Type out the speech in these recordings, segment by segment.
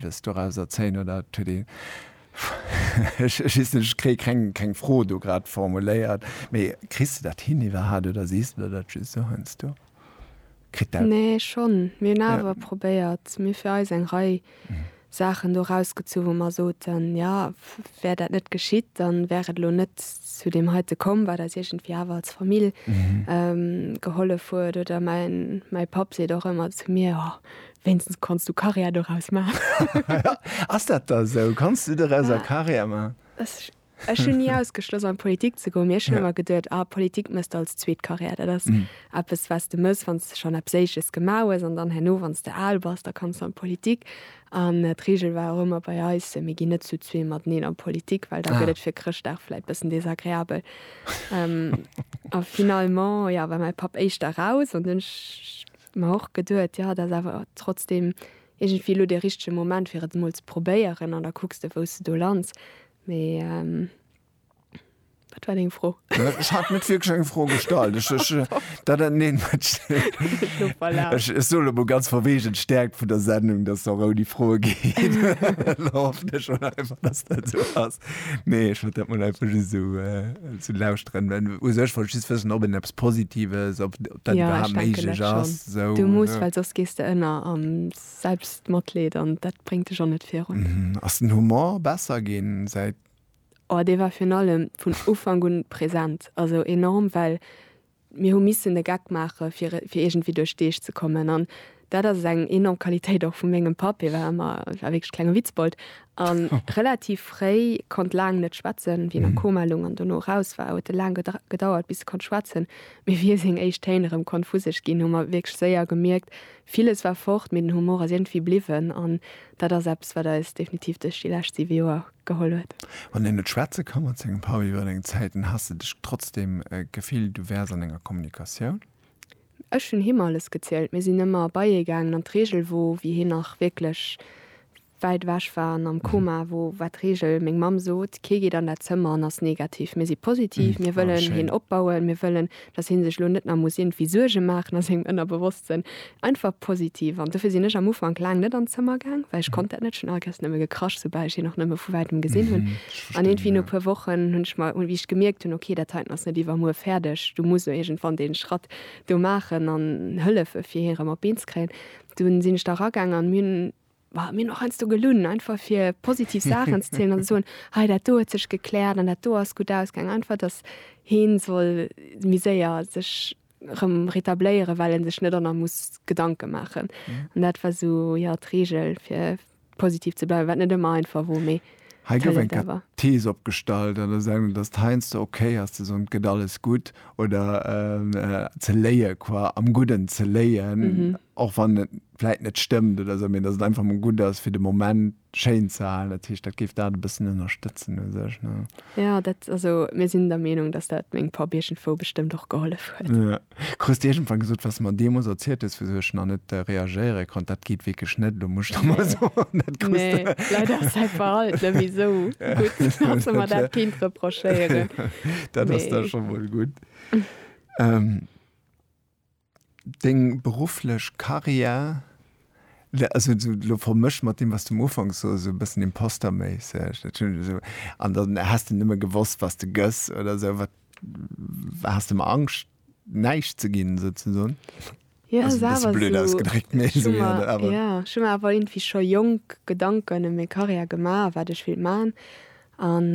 Des doraus erzéien oder et huet ee. Ech weess net, ech kréie keng Fro do grad formuléiert. Mee kriss de dat hin iwwerhat oder sees de der dat just esou heiansdo? Kritt dat. Nee, schonn. Mir hunn awer probéiert, mir fir eis eng Rei Saachen do erausgezu wou mer soten, jo, wär dat net geschitt, da wär et elo net zu deem heite komm, wat eis iergendwéi awer als Famill gehollef huet. Oder mäin Papp seet och ëmmer zu mir, jo, Wéinstens kanns du Karriär doraus maachen. Ass dat da sou? Kanns du doraus a Karriär maachen? Ech hunn ni ausgeschloss an d'Politik ze goen, mee ech hunn ëmmer geduet, ah Politik méchs de als zweet Karriär. Dat ass eppes wat s de méchs wann s de schonn eppes Éisches gemaach hues an dann herno wann s de al bass, da kanns du an d'Politik. An d'Reegel war och ëmmer bei eis, mir ginn net zu zwee mateneen an d'Politik, well da gëtt et fir Chrëschtdag vläit bëssen desagreabel. A finalement, jo, war mäi Papp éischter raus an dunn hunn ech Mä och geduet, jo, et ass awer trotzdeem iergendwéi elo dee richtege Moment, fir et emol ze probéieren. An da kucks de, wou s de do lands. Mee wat war deng Fro? Ech hat net wierklech eng Fro gestallt. Ech, ech, dat dat, neen, ech, ech, ech soen emol ganz verweecht, et stäerkt vun der Sendung, dass se och ouni Froe geet. Elo hoffen ech mol einfach, dass dat esou ass. Nee, ech wollt dat mol einfach just esou, esou lauschteren. U sech wollt ech just wëssen, ob een eppes Positives, ob. dat iwwerhaapt méiglech ass. Du muss, well soss gees de ënner am Selbstmatleed an dat bréngt dech och net virun. Ass den Humor besser ginn säit. Oh, dee war virun allem vun Ufank un present, also enorm, well mir hu missen e Geck maache fir iergendwéi duerch d'Deeg ze kommen an Dat ass eng enorm Qualitéit och vu mengem Papp. Hie war ëmmer, war wierklech klenge Witzbold a relativ fréi, konnt laang net schwätzen. Wéi en a Koma loung an dono eraus war, huet e laang gedauert, bis e konnt schwätzen. Mee wéi e seng éischt Téin erëm konnt vu sech ginn, hu mer wierklech séier gemierkt, Villes war fort, mee den Humor ass iergendwéi bliwwen. An dat ass eppes, wat eis definitiv duerch déi lescht siwe Joer geholl huet. Wann een net schwätze ka mat sengem Papp iwwer eng Zäit, dann has de dech trotzdeem gefillt, du wäers an enger Kommunikatioun? Ech hunn him alles gezielt. Mir sinn ëmmer bei hie gaangen an d'Regel wor, wéi hien nach wierklech wäit ewech war an am Koma wor, war d'Regel, meng Mamm sot, kee geet an dat Zëmmer an ass negativ. Mir si positiv, mir wëllen hien opbauen, mir wëllen, datt hie sech elo net nach muss iergendwéi Suerge maachen a sengem Ënnerbewosstsënn. Einfach positiv. An dofir sinn ech am Ufank laang net an d'Zëmmer gaang, well ech konnt dat net. Ech hunn allequerst nëmme gekrasch, soubal ech hien och nëmme vu wäitem gesinn hunn. An iergendwéi no e puer Wochen hunn ech mer, wéi ech gemierkt hunn, ok, dat heiten ass net iwwermuer fäerdeg, du muss elo iergendwann dee Schratt do maachen an hëllefe fir hie erëm op d'Been ze kréien, du sinn ech da eragaangen an mir hunn, bah, mir hunn och heiansdo gelunn, einfach fir positiv Saachen ze zielen an ze soen, hei dat do huet sech gekläert an dat do ass gutt ausgaangen, einfach datt hee soll méi séier sech. rëm rétabléieren well en sech net an der muss Gedanken maachen an dat war sou jo d'Regel fir positiv ze bleiwen, wat net ëmmer einfach wor mee Hei gouf eng Thees opgestallt an der Sendung dass heiansdo ok ass ze soen et gëtt alles gutt oder ze léie qua am gudden ze léien och wann et. vläit net stëmmt oder esou, mee datt et einfach mol gutt ass fir de Moment schéin ze halen, dat heescht dat géif dat e bëssen ënnerstëtzen u sech, ne? Jo, dat, also mir sinn der Meenung, datt dat meng Papp iergendwou bestëmmt och gehollef huet. Jo. Krus de iergendwann gesot, wat s de mer deemools erzielt hues, wisou ech nach net reagéiere konnt, dat geet wierklech net, elo muss ech der mol soen, dat krus de. Nee, leider ass säi Verhalten net méi esou gutt, datt s de mer dat kéint reprochéieren. Dat ass da scho mol gutt. Deng berufflech Carrière, also sou lo vermëscht mat deem, wat s du am Ufank soss, sou e bëssen imposterméisseg, dat hunn ech esou, an dann häss de nëmme gewosst, was de gëss oder sou. Wat, has de mar Angscht, näischt ze ginn, souzesoen? Jo, ass awer sou. Blöd ausgedréckt, mee sou, jo, awer. Jo, ech hu mer awer iergendwéi scho jonk Gedanken ëm meng Carrière gemaach, wat ech wéilt maachen an.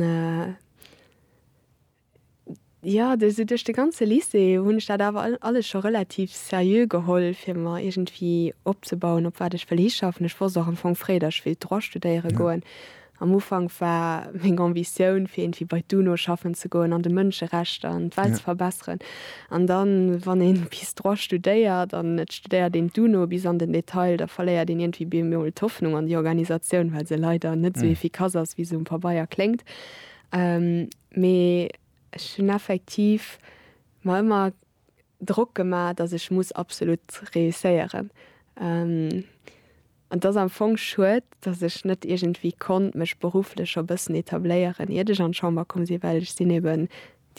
Jo, de sou duerch de ganze Lycée hunn ech dat awer alles scho relativ seriö geholl, fir mer iergendwéi opzebauen, op wat ech wëll hischaffen. Ech wosst och am Fong fréi, datt ech wéilt Droit studéiere goen. Am Ufank war meng Ambitioun, fir iergendwéi bei d'UNO schaffen ze goen an de Mënscherechter an d'Welt ze verbesseren. An da wann ee bis Droit studéiert an et studéiert een d'UNO bis an den Detail, da verléiert een iergendwéi bemol d'Hoffnung an déi Organisatioun, well se leider net sou efficace ass, wéi se um Pabeier kléngt. Mee ech hunn effektiv mer ëmmer Drock gemaach, datt ech muss absolut reusséieren. An et ass am Fong schued, datt ech net iergendwéi konnt mech berufflech scho bëssen etabléieren, iert ech an d'Chamber komm sinn, well ech sinn eeben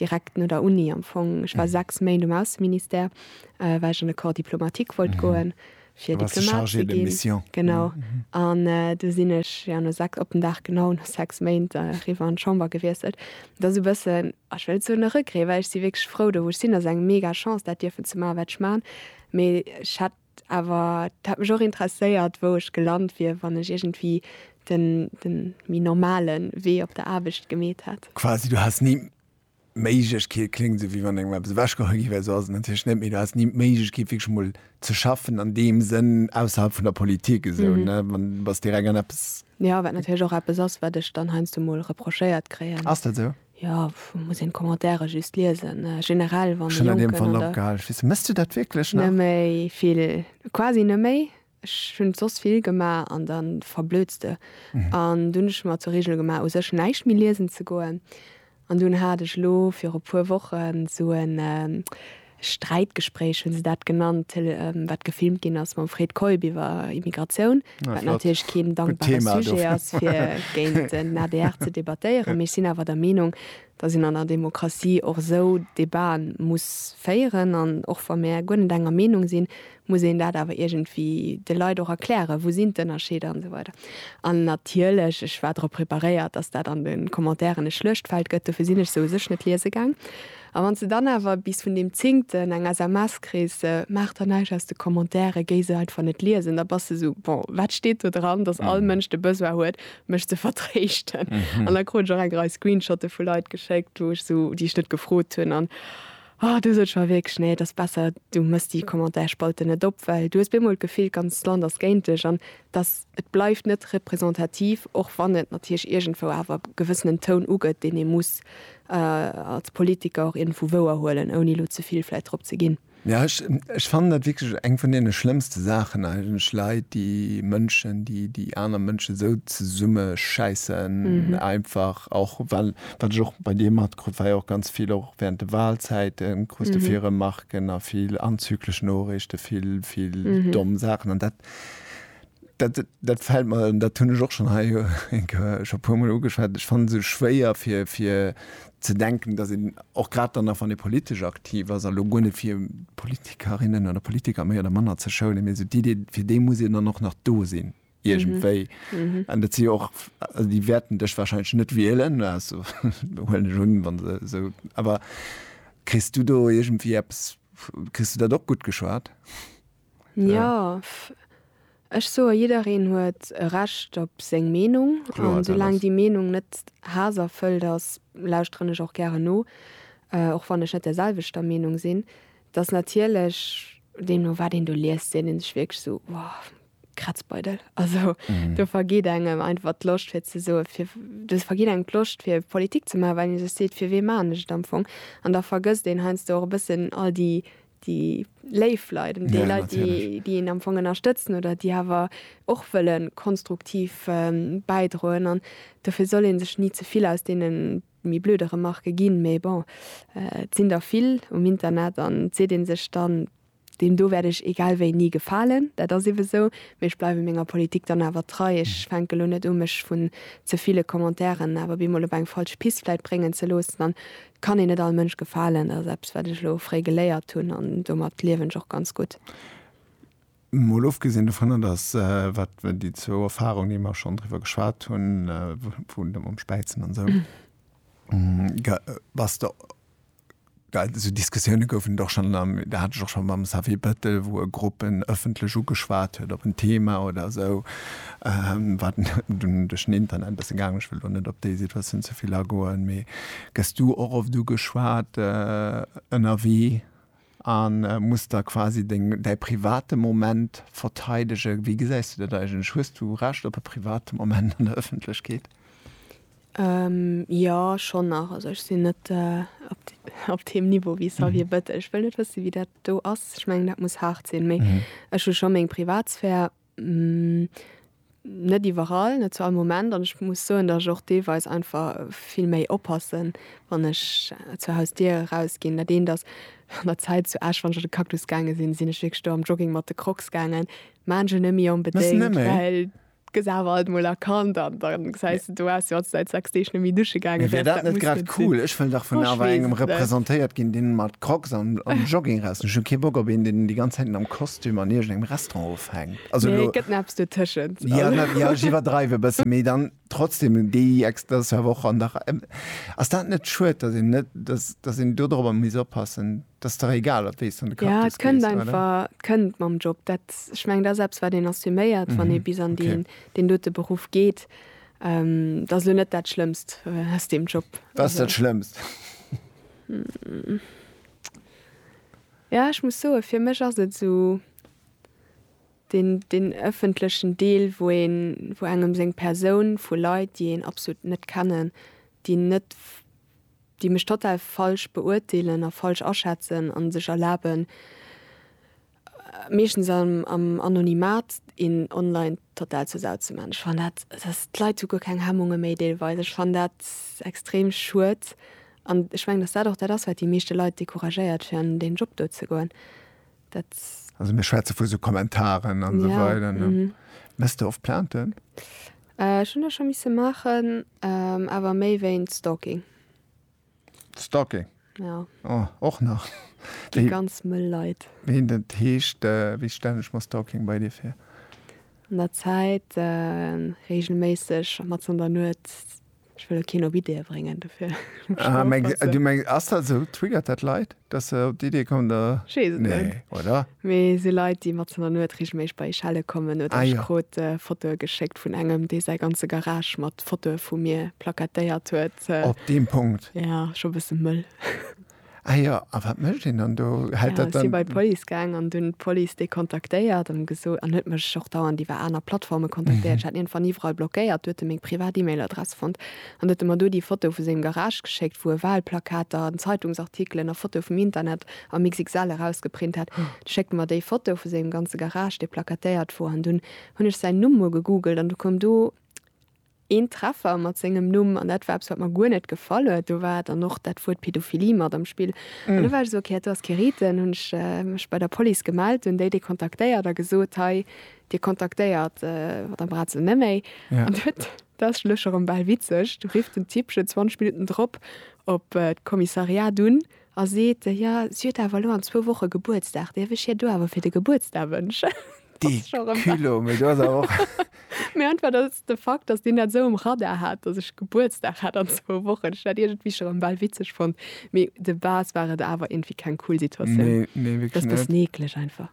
direkt no der Uni am Fong, ech war sechs Méint um Ausseministère, well ech an de Corps diplomatique wollt goen, fir Diplomat ze ginn, genau, an du sinn ech jo no sechs, op den Dag genau, no sechs Méint eriwwer an d'Chamber gewiesselt. Et ass e bëssen, ech wëll net soen e Regret, well ech si wierklech frou do, wou ech sinn. Et ass eng mega Chance, dat dierfen ze maachen, wat ech maachen. Mee ech hätt awer, et hätt mech och interesséiert, wou ech gelant wier, wann ech iergendwéi de méi normale Wee op der Aarbecht gemeet hätt. Quasi, du häss ni. Méiglechkeet kléngt esou, wéi wann engem eppes ewechgeholl gi wär. Esou ass et natierlech net, mee do häss ni d'Méiglechkeet, wierklech emol ze schaffen an deem Sënn ausserhalb vun der Politik esou, ne? Wann, du bass direkt an eppes. Jo, wat natierlech och eppes ass, wat ech dann heiansdo emol reprochéiert kréien. Ass dat esou? Jo, muss een d'Commentaire just liesen. Generell, wann e Jonken an der. Schonn an deem Fall opgehal. Misst de dat wierklech nach? Net méi vill, quasi net méi. Ech hunn soss vill gemaach an da verblödst de. An dunn hunn ech mer zur Reegel gemaach u sech näischt méi liesen ze goen. An dunn hat ech elo viru puer Wochen sou e Sträitgespréich, hunn se dat genannt, Tele wat gefilmt ginn ass mam Fred Keup iwwer Immigratioun, wat natierlech keen dankbare Sujet ass fir géint den adr ze debattéieren. Mee ech sinn awer der Meenung, datt een an der Demokratie och esou Debaten muss féieren. An och wa mir guer net enger Meenung sinn, muss een dat awer iergendwéi de Leit och erklären, wou sinn d'Ënnerscheeder an esou weider. An natierlech, ech war drop preparéiert, dass dat an de Commentairen e Schluechtfeld gëtt, dofir sinn ech se u sech net liese gaang. A wann s de dann awer bis vun deem Zéngten eng SMS kriss, Maach der näischt aus de Commentairen, géi se einfach net liesen, da bass de esou, Bon, wat steet do dran, dass all Mënsch de Besoin huet, mech ze vertréischten? An da krut ech och eng Rei Screenshotte vu Leit geschéckt, wou ech esou, déi ech net gefrot hunn. An. Oh du sos schonn wierklech, nee et ass besser du mëss déi Commentaire-Spalte net op, well du hues bemol d'Gefill d'ganzt Land ass géint dech an dass et bleift net representativ, och wann et natierlech iergendwou awer gewëssenen Toun ugëtt, deen ee muss als Politiker och iergendwou wouerhuelen, ouni elo ze vill vläicht drop ze ginn. Jo, ech fannen dat wierklech eng vun deene schlëmmste Saachen eigentlech, Leit déi Mënschen, déi déi aner Mënschen esou zesummeschäissen einfach, och well, wat ech och bei dir mat krut war jo och ganz vill och während de Wahlzäiten krus de vill Remarquen a vill anzüglich Noorichten, vill, vill domm Saachen an dat, dat, dat fällt mer, an dat hunn ech och schon hei jo eng Kéier scho puer mol ugeschwat, ech fannen se schwéier fir, fir ze denken, dass een och grad dann nach wann ee politesch aktiv ass, elo guer net fir Politikerinnen oder Politiker méi oder manner ze schounen, mee esou d'Idee fir déi muss een dann och nach do sinn. iergendwéi. An dat si jo och, also déi wäerten dech wahrscheinlech net wielen, also huelen ech un, wa se esou, awer kriss du do iergendwéi eppes, kriss du dat och gutt geschwat? Jo, ech soe jiddereen huet e Recht op seng Meenung. Kloer, dat ass. A soulaang déi Meenung net haasserfëllt ass, lauschteren ech och gären no, och wann ech net der selwechter Meenung sinn. Et ass natierlech, deemno wat een do liest, seet ee sech wierklech esou, wow, Kratzbeidel. Also mhm. du vergeht engem einfach Loscht fir ze so du vergeht eng Loscht fir Politik ze machen, weil se seet fir we manecht am Fong. an da vergësst den heinsst och bëssen all die die Leiifleiden die ja, Leute, die, die en am Fong ënnerstëtzen oder die hawer och wëllen konstruktiv ähm, beidroen an dofir soll en sech nie zevill aus denen mi blöde Remarke ginn, méi bon äh, sinn der vill um Internet an se den sech dann Deem do wäert ech egal wéi ni gefalen, dat ass ebe sou. Mee ech bleiwe menger Politik dann awer trei. Ech fänke elo net u mech vun ze ville Commentairen awer bemol op eng falsch Pist vläit bréngen ze loossen. An et kann een net all Mënsch gefalen, dat ass eppes wat ech elo fréi geléiert hunn an domat liewen ech och ganz gutt. Mol ofgesinn dovunner, datt wat déi zwou Erfarung, déi mer schonn driwwer geschwat hunn, vun dem Späizen an esou, bass de well esou Diskussioune goufen et och schonn, dat hat ech och schonn mam Xavier Bettel, wou e Grupp en ëffentlech ugeschwat huet op en Thema oder esou, wat dunn duerch den Internet e bësse gaangen ass. Ech wëll elo net op déi Situatioun ze vill agoen, mee gëss du och oft ugeschwat ënnerwee? a muss da quasi deng, däi private Moment verteidegen. Wéi gesäis du dat eigentlech? Hues du Recht op e private Moment an der Ëffentlechkeet? Jo, schonn nach. Also ech sinn net op deem Niveau wéi Xavier Bettel. Ech wëll net wësse wéi dat do ass. Ech mengen dat muss haart sinn, mee ech hu scho meng Privatsphär. Net iwwerall, net zu all Moment. An ech muss soen, datt ech och deelweis einfach vill méi oppassen, wann ech zur Hausdier erausginn. Dat eent ass, an der Zäit zu Esch, wann ech an de Cactus gaange sinn, sinn ech wierklech do am Jogging mat de Crocs gaangen. Maachen ech net méi onbedéngt, well gëss awer alt mol erkannt an da gesäis de, do waars de jo säit sechs Deeg net méi dusche gaangen. Mee wär dat net grad cool? Ech wëll dach vun awer engem representéiert ginn, dee mat Crocs an Jogging raus. Ech hun kee Bock op een deen déi ganz Zäit am Kostüm an iergend engem Restaurant ofhänkt. Also elo. Nee, et gëtt neps dotëschent. Jo, jo ech iwwerdreiw e bëssen, mee dann trotzdem déi ex, dat ass jo awer och an der, ass dat net schued, dat een net, dass dass een do dorobber misst oppassen? Dat ass dach egal op wéi s de an de Cactus gees, oder? Ja, et kënnt einfach, et kënnt mam Job. Dat, ech mengen dat ass eppes wat een assuméiert, wann ee bis an deen deen dote Beruff geet. Dat ass elo net dat Schlëmmst aus deem Job. Wat ass dat Schlëmmst? Jo ech muss soen fir mech ass et sou den den ëffentlechen Deel wou een wou engem seng Persoun vu Leit déi een absolut net kennen déi net déi mech total falsch beurteelen a falsch aschätzen an sech erlaben meeschtens am am Anonymat een online total zur Sau ze man. Ech fan dat dass d'Leit hu guer keng Hemmunge méi deelweis. Ech fan dat extrem schued an ech mengen dass dat och dat ass wat déi meeschte Leit decouragéiert fir an deen Job do ze goen dat. Also mir schwätze vu sou Kommentaren an esou weider ne? Mess de oft Plainten? Ech hunn der scho misse maachen awer méi wéint Stalking. Stalking. Ja. Oh, och nach. Déi ganz mëll Leit. Wéi dat heescht, wéi stellen ech mer Stalking bei dir vir? An der Zäit, reegelméisseg, mat an der Nuet. Ech wëll lo keen op Ideeë bréngen dofir. Ah, du mengs, ass dat esou? Triggert dat Leit? Dass se op déi Idee kommen, da. Ech weess et net. Nee, oder? Mee et si Leit, déi matzen der Nuet reegelméisseg bei Echelle kommen. Oder ech krut Fotoe geschéckt vun engem, dee säi ganze Garage mat Fotoe vu mir plakatéiert huet. Op deem Punkt? Jo, scho e bësse mëll. Ah jo, a wat mécht een dann do? Hält dat dann. Ech si bei d'Police gaang an hunn d'Police déi kontaktéiert an gesot, an huet mech och dauernd iwwer aner Plattforme kontaktéiert. Ech hat iergendwann iwwerall blockéiert. Du huet e meng privat E-Mail-Adress fonnt. An huet e mer do déi Foto vu sengem Garage geschéckt, wou e Walplakater an Zeitungsartikelen a Fotoe vum Internet am XXL erausgeprint hat. Du schéckt e mer déi Foto vu sengem ganze Garage, dee plakatéiert wor, an dunn hunn ech säin Numm mol gegoogelt an du koum do een Treffer mat sengem Numm an dat war eppes, wat mer guer net gefall huet. Do war dann och dat Wuert Pedophilie mat am Spill an du war ech esou, ok, hat do ass kee Reten. Hunn ech mech bei der Police gemellt, hunn déi déi kontaktéiert a gesot, hei, dir kontaktéiert d'Madame Braz elo net méi an huet. Daat ass lech erem baal witzeg. Du rifft den Tippchen 20 Minuten drop op d'Kommissariat un a seet, jo si huet awer elo an zwou Wochen Gebuertsdag, däerf ech hir do awer fir de Gebuertsdag wënschen? Dee Culot, mee do ass awer och. Mee einfach datt de Fakt, datt deen dat esou um Radar hat, datt ech Gebuertsdag hat an zwou Wochen, ech dat iergendwéi scho rem baal witzeg fonnt. Mee de base war et awer iergendwéi keng cool Situatioun. Nee, nee wierklech net. Ass bessen eekleg einfach.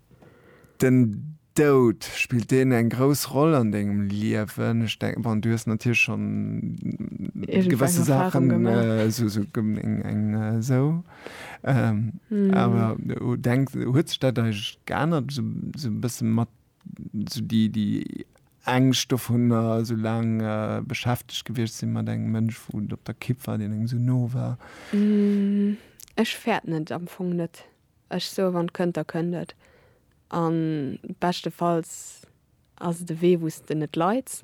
Den Doud, spillt deen eng grouss Roll an dengem Liewen? Ech denken, bon, du hues natierlech schonn gewësse Saachen, esou eng esou, awer denk, huet sech dat eigentlech geännert esou e bësse mat esou déi, déi Ängscht dovunner, esou laang beschäftegt gewiescht sinn mat engem Mënsch, wou et op der Kipp war, deen engem esou no war? Ech fäert net, am Fong net. Ech soe wann et kënnt, da kënnt et. A beschtefalls ass et e Wee wou s de net leids.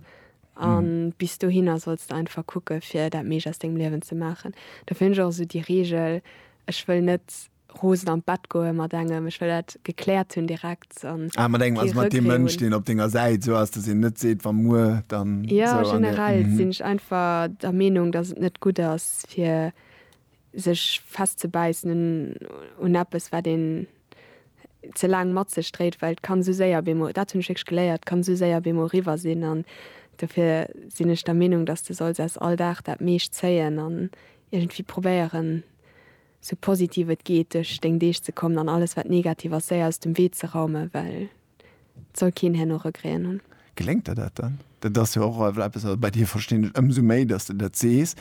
A bis dohinner solls de einfach kucke fir dat meescht aus dengem Liewen ze maachen. Dofir hunn ech och esou déi Reegel, ech wëll net rosen an d'Bett goe mat engem, ech wëll dat gekläert hunn direkt an kee Regreten hunn. Ah mat engem, also mat deem Mënsch deen op denger Säit esou ass, datt een net seet wa muer dann esou. Jo generell sinn ech einfach der Meenung, datt et net gutt ass fir sech festzebäissen un eppes wat een ze laang mat sech dréit, well et kann esou séier op eemol, dat hunn ech wierklech geléiert, et kann esou séier op eemol eriwwer sinn an dofir sinn ech der Meenung, datt s de solls aus all Dag dat meescht zéien an iergendwéi probéieren esou positiv et geet duerch deng Deeg ze kommen an alles wat negativ ass séier aus dem Wee ze raumen, well et soll keen herno Regréen hunn. Geléngt der dat dann? Dat ass jo och eppes, wat bei dir, verstinn ech, ëmsou méi datt s de dat sees,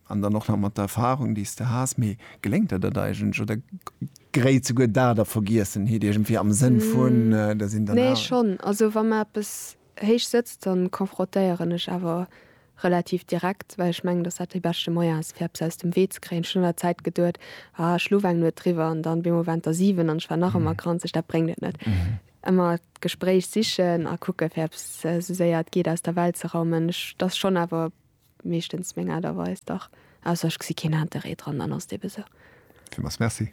An dann och nach mat der Erfahrung, déi s de has. Mee geléngt der dat eigentlech, oder gréit souguer dat a Vergiessenheet iergendwéi, am Sënn vun, der sinn dann awer. Nee, schonn. Also wa mer eppes héich sëtzt, da confrontéieren ech awer relativ direkt, well ech mengen, datt dat dee beschte Moyen ass, fir eppes aus dem Wee ze kréien. Ech hunn an der Zäit geduet, Ah, ech luff eng Nuet driwwer, an dann op eemol waren et der siwen, an ech war nach ëmmer granzeg. Dat bréngt et net. Ëmmer d'Gespréich sichen a kucken, fir eppes esou séier et geet aus der Welt ze raumen. Ech, dat ass schonn awer Meeschtens meng Aart a Weis, dach. Ausser ech gesi keen Interêt dran, dann ass et ebe sou. Villmools Merci.